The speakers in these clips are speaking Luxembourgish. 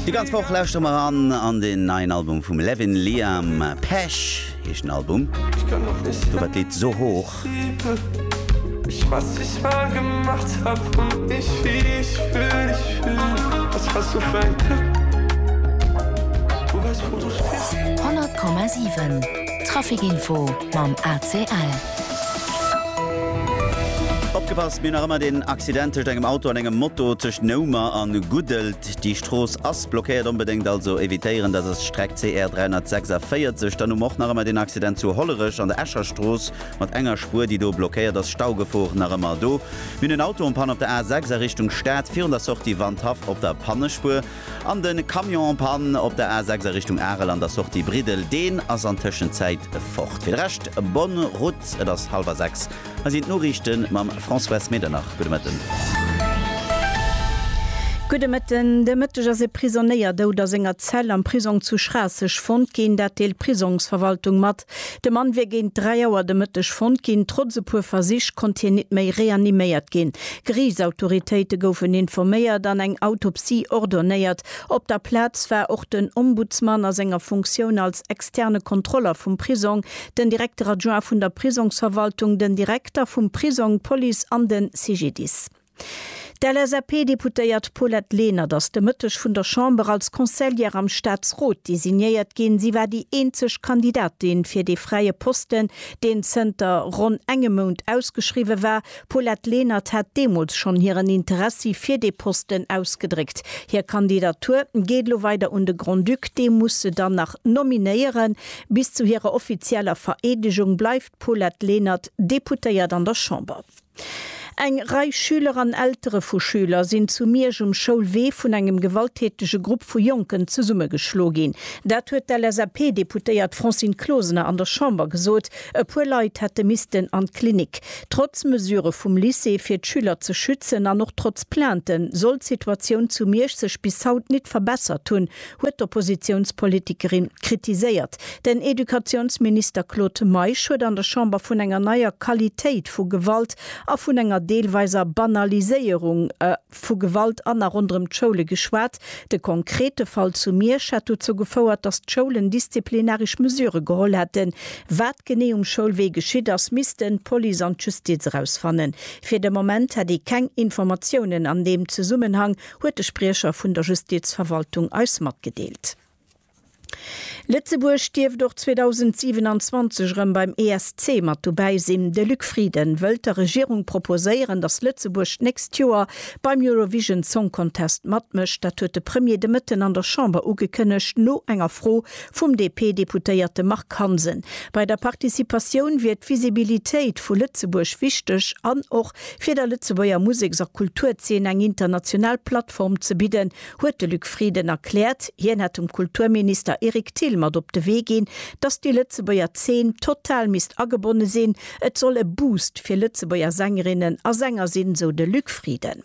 Déi ganz Woch lauschtere mer eran an den neien Album vum Levin Liam. Pech heescht den Album. Do war d'Lidd So Hoch. 100,7 Traficinfo mam ACL. Opgepasst, mir hunn nach ëmmer den Accident tëscht engem Auto an engem Moto tëscht Noumer an Guddel. Déi Strooss ass blockéiert, onbedéngt also evitéieren. Dat ass d'Streck CR 346. Dann hu mer och nach ëmmer deen Accident zu Hollerech an der Escher Strooss mat enger Spuer, déi do blockéiert ass. Staugefor nach ëmmer do. Mir hunn en Auto en panne op der A 6 a Richtung Stad, virun der Sortie Wandhaff op der Pannespuer. An de Camion en panne op der A 6 a Richtung Arel an der Sortie Briddel. Deen ass an Tëschenzäit fort. Fir de Rescht, bonne route. Et ass hallwer 6. Hei sinn d'Noriichte mam Françoise Medernach. Gudde Mëtten. Gudde Mëtten. De Mëtteg ass e Prisonéier dout a senger Zell am Prisong zu Schraasseg fonnt ginn. Dat deelt d'Prisongsverwaltung mat. De Mann wier géint 3 Auer de Mëtteg fonnt ginn. Trotz e puer Versich konnt hien nit méi reaniméiert ginn. Geriichtsautoritéite goufen informéiert an eng Autopsie ordonéiert. Op der Plaz war och den Ombudsman a senger Funktioun als externe Kontroller vum Prisong, den Directeur adjoint vun der Prisongsverwaltung, den Direkter vum Prisong, d'Police an de CGDIS. D'LSAP-Deputéiert Paulette Lenert ass de Mëtteg vun der Chamber als Conseillère am Staatsrot designéiert ginn. Si war déi eenzeg Kandidatin fir dee fräie Posten, deen zënter ronn engem Mount ausgeschriwwe war. D'Paulette Lenert hat deemools schonn hiren Interessi fir dee Posten ausgedréckt. Hir Kandidatur geet elo weider un de Grand-Duc, dee muss se dann nach Nominéieren. Bis zu hirer offizieller Vereedegung bleift d'Paulette Lenert Deputéiert an der Chamber. Eng Rei Schüler an Eltere vu Schüler sinn zu Miersch um Schoulwee vun engem gewalttätege Grupp vu Jonken zesummegeschlo ginn. Dat huet d'LSAP-Deputéiert Francine Closener an der Chamber gesot. E puer Leit hätte missten an d'Klinik. Trotz Mesure vum Lycée fir d'Schüler ze schützen an och trotz Plainten, soll d'Situatioun zu Miersch sech bis haut nit verbessert hunn, huet d'Oppositiounspolitikerin kritiséiert. Den Educatiounsminister Claude Meisch huet an der Chamber vun enger neier Qualitéit vu Gewalt a vun enger deelweiser Banaliséierung vu Gewalt an a ronderëm d'Schoule geschwat. De konkrete Fall zu Miersch hätt dozou gefouert, datt d'Schoulen disziplinaresch Mesure geholl hätten. Wat genee um Schoulwee geschitt ass, missten d'Police an d'Justiz erausfannen. Fir de Moment hätt ee keng Informatiounen an deem Zesummenhang. huet de Spriecher vun der Justizverwaltung eis matgedeelt. Lëtzebuerg dierft och 2027 erëm beim ESC mat dobäi sinn. De Luc Frieden wëllt der Regierung proposéieren, datt Lëtzebuerg d'nächst Joer beim Eurovision Song Contest matmécht. Dat huet de Premier de Mëtten an der Chamber ugekënnegt, no enger Fro vum DP-Deputéierte Marc Hansen. Bei der Participatioun wier d'Visibilitéit vu Lëtzebuerg wichteg an och Fir der Lëtzebuerger Museks a Kulturzeen eng international Plattform ze bidden, huet de Luc Frieden erkläert, hien hätt dem Kulturminister Eric Thill mat op de Wee ginn, datt déi Lëtzebuerger Zeen total misst agebonne sinn, et soll e Boost fir Lëtzebuerger Sängerinnen a Sänger sinn, sou de Luc Frieden.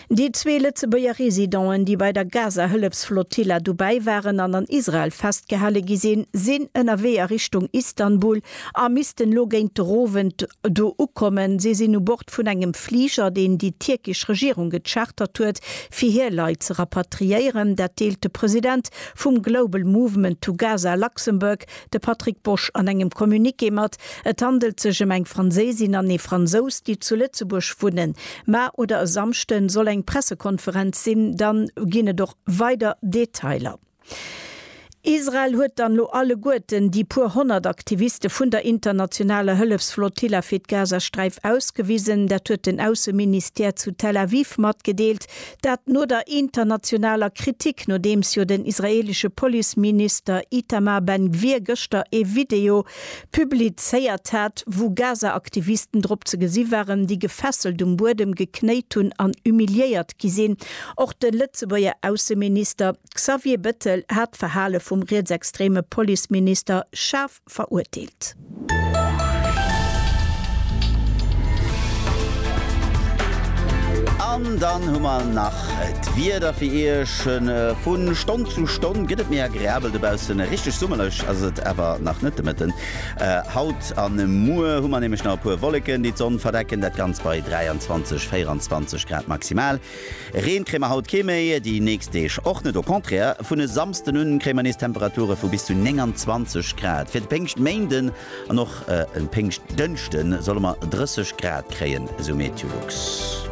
Déi zwee Lëtzebuerger Residenten, déi bei der Gaza-Hëllefsflotilla dobäi waren an an Israel festgehale gi sinn, sinn ënnerwee a Richtung Istanbul a missten elo géint den Owend do ukommen. Si sinn u Bord vun engem Fliger, deen déi tierkesch Regierung gechartert huet, fir hir Leit ze rapatriéieren. Dat deelt de President vum Global Movement to Gaza Luxembourg, De Patrick Bosch an engem Communiqué mat. Et handelt sech ëm eng Franséisin an ee Fransous, déi zu Lëtzebuerg wunnen. Mar oder e Samschden soll eng Pressekonferenz sinn, dann ginn et och weider Detailer. Israel huet dann elo alleguerten déi puer honnert Aktiviste vun der internationaler Hëllefsflottilla fir d'Gazasträif ausgewisen. Dat huet den Ausseministère zu Tel Aviv matgedeelt. Dat no der internationaler Kritik, nodeems jo den israeelesche Policeminister Itamar Ben Gvir gëschter ee Video publizéiert hat, wou Gaza-Aktivisten drop ze gesi waren, déi gefesselt um Buedem geknéit hunn an humiliéiert gi sinn. Och de Lëtzebuerger Ausseminister Xavier Bettel hat d'Verhale vum rietsextreme Policeminister schaarf. verurteelt. An dann hu mer nach d'Wieder fir Iech. Vu Stonn zu Stonn gëtt et méi agreabel dobaussen. Richteg summerlech ass et awer nach net de Mëtten. Haut a muer hu mer nämlech nach e puer Wolleken, déi d'Sonn verdecken. Dat Ganzt bei 23, 24 Grad maximal. Reen kréie mer haut kee méi, déi nächst Deeg och net. Au contraire, vun e Samsden un kréie mer nees Temperature vu bis zu 29 Grad. Fir de Péngschtméinden an och e Péngschtdënschde solle mer 30 Grad kréien, esou Meteolux.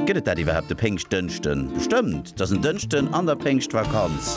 Gëtt et dat iwwerhaapt e Péngschtdënschden? Bestëmmt, et ass en Dënschden an der Péngschtvakanz.